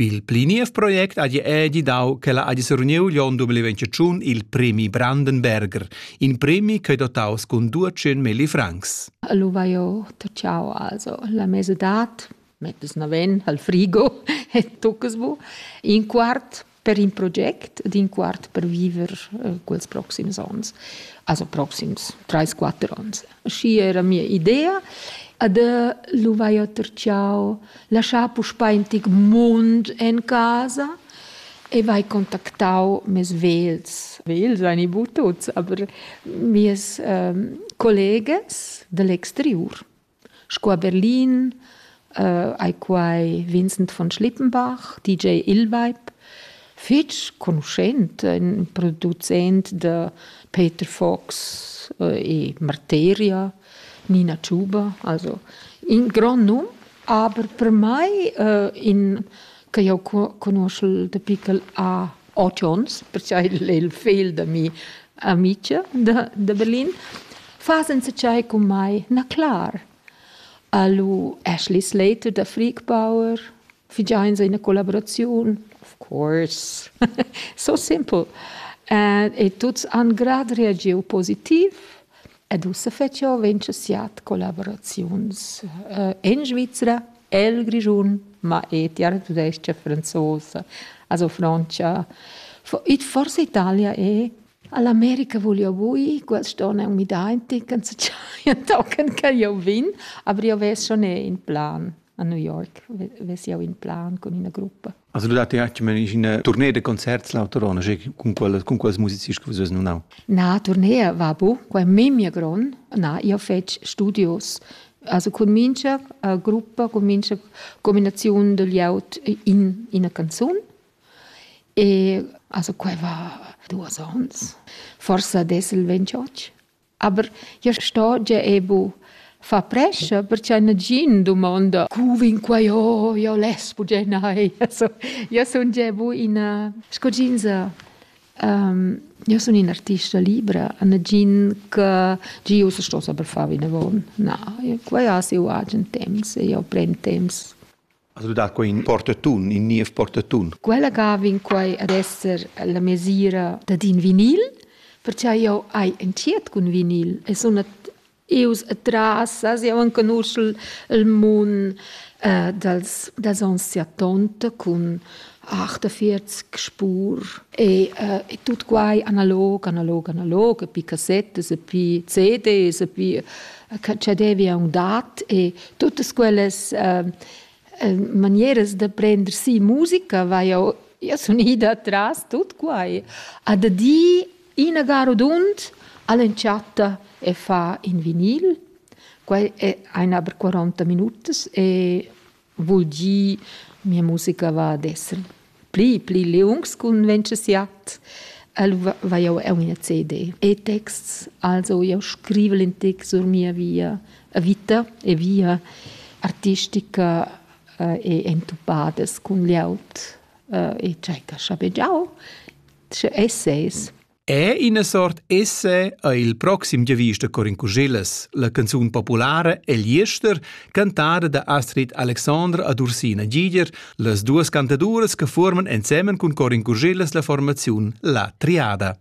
Pil pli niev project hagi era gidau ch'ella hagi seruniu l'onn 2021 il premi Brandenberger, in premi ch'ei dotaus cun 200 milli francs. Lu vai jeu tacciau also la mesadad, mettas naven al frigo e toccas bu. In quart per in project d'in quart per viver eh, quels proxims onns, also proxims 3-4 onns. Schi era mia idea. Ad lu vai oter ciao, lasciar puspei in tic mund en casa e vai contactau mes vels. Vels ein i bu tuts, aber mies ähm, colleges dall'exteriur. Sco a Berlin ei quai Vincent von Schlippenbach, DJ Illweib, fetg conuschent, in producent da Peter Fox e Marteria, Nina Tschube, also in grond num, aber per mai in che jau conuschel da pickel a otg onns, perciò il, il figl da mia amica da, da Berlin, fa senza chai con mai na clar. Alu Ashley Slater da Freakbauer, figiains in collaboraziun, of course. so simple. Uh, e tuts han grad reagiu positiv Ed ussa fetsch jeu ventscha siat collavuraziuns en Svizra, el Grischun, ma e tiartudescha franzosa, also Frontscha. Forsa Italia è. All'America voglio bui, quest onn è un midainti, canza già tochen che io vin, aber io ves schon in plan a New York, ves io in plan con ina gruppa. Also du datti anche in tournée de concerts l'autorona, con quelle con quels musici che vus non hau. Na, tournée va bu, quai memia gron. Na, io fec studios. Also con mincha uh, gruppa, con mincha combinazione degli out in in canzone. E also quai va duas ons. Forse adesso il 28. Aber ja sto gia e bu. Fa prescha perche nagin dumonda cu vin quai oh io less bugen nei. So, io sun gia bu ina sco jeansa um, io sun ina artista libra, a nagin che gi ussa sto saper far vinavon. Na, quai ha siu agen temps e io pren temps As dà quai in portatun, in niev portatun. Quella ga vegn quai ad esser la mesira dad in vinil, perciò jau hai entschiet cun vinil e sun ius atras, as jau enconusch il mun äh, dals, dals onns 70 cun 48 spur e, äh, e tut quai analog, analog, analog, e pi cassettas e pi CDs e pi che che devi aunc dat e tuttas quellas äh, manieras da prender si musica vai io io sun ida tras tut quai a da di ina garudund all'entschatta e fa in vinil quai è eine aber 40 minutos e Vul dir, mia musica va ad esser pli, pli liungs cun Venceziat. El va jau eu ina CD e texts, also jau scrivel in text sur mia via vita e via artistica e entupadas cun glieud e tschecca schabegiau, sche essays. È ina sort esse è il proxim giavist da Corin Cuschillas, la canzun populara El Jester, cantada da Astrid Alexandre ad Ursina Giger, las duas cantaduras che forman ensemen cun Corin Cuschillas la formaziun La Triada.